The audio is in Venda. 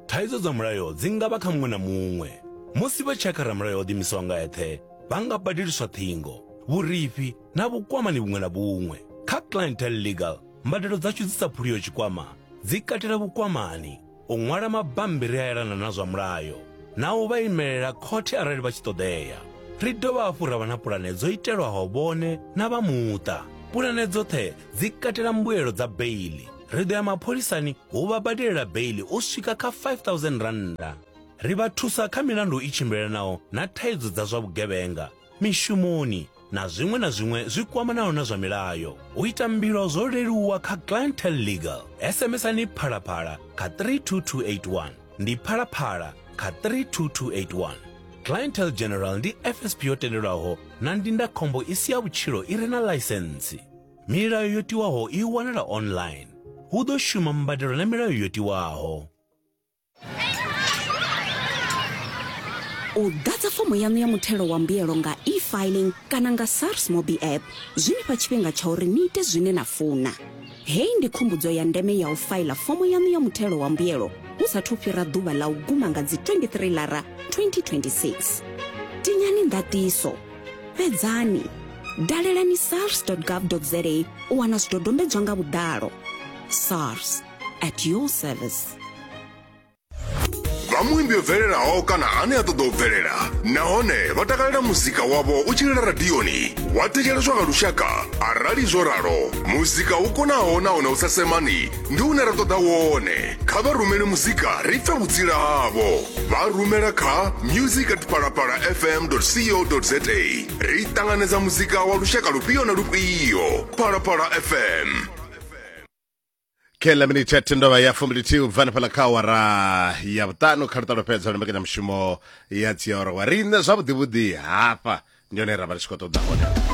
Thaidzo dza mulayo dzi nga vha kha muṅwe na muṅwe. Musi vha tshakha ramulayo o ḓimisaho nga eṱhe, vha nga badeliswa ṱhingo, vhurifhi na vhukwamani vhuṅwe na vhuṅwe. Kha Clientele Legal, mbadelo dzashu dzi sa phuliho tshikwama dzi katela vhukwamani, u ṅwala mabammbiri a elana na zwa mulayo na u vha imelela khothe arali vha tshi ṱoḓea. Ri dovha hafhu ra vha na pulane dzo itelwaho vhone na vha muṱa. Pulane dzoṱhe dzi katela mbuelo dza beiḽi, ri ḓo ya mapholisani hu vha badelela beili u swika kha 5000 rannda ri vha thusa kha milandu i tshimbilelanaho na thaidzo dza zwa vhugevhenga mishumoni na zwiṅwe na zwiṅwe zwi kwamanaho na zwa milayo u ita mbilo zwo leluwa kha clientel legal sms-ani phalaphala kha 32281 ndi phalaphala kha 32281 clientel general ndi fsp yo tendelwaho na ndindakhombo i si ya vhutshilo i re na ḽaisentsi Milayo yo tiwaho i wanala online. Hu ḓo shuma mbadelo na milayo yo tiwaho. u ḓadza fomo yaṋu ya muthelo wa mbuyelo nga e-filing kana nga sars mobi app zwi ni fha tshifhinga tsha uri ni ite zwine na funa heyi ndi khumbudzo ya ndeme ya u faila fomo yaṋu ya muthelo wa mbuyelo hu sathu fhira ḓuvha ḽa u guma nga dzi 23 lara 2026 tinyani ndatiso fhedzani dalelani sars gov za u wana zwidodombedzwa nga vhuḓalo sars at your service vha muimbi yo bvelelaho kana ane a ṱoḓa u bvelela nahone vha takalela muzika wavho u tshilela radioni wa thetsheleswa nga lushaka arali zwo ralo muzika u konaho nahone u sa semani ndi une ra ṱoḓa wone kha vha rumele muzika ri pfe vhutsila havho vha rumela kha music at palapala fm co za ri ṱanganedza muzika wa lushaka lufhio na lufhio palapala fm kela minithe ya tendova ya fumbilithihi u bva hanefhaḽa kha awara ya vhuṱanu kha luṱalo fhedza lwa mbekanyamushumo ya dziawara wa riṋe zwavhuḓivhuḓi hafha ndi hone ra vha ri tshi khou ṱoḓa hone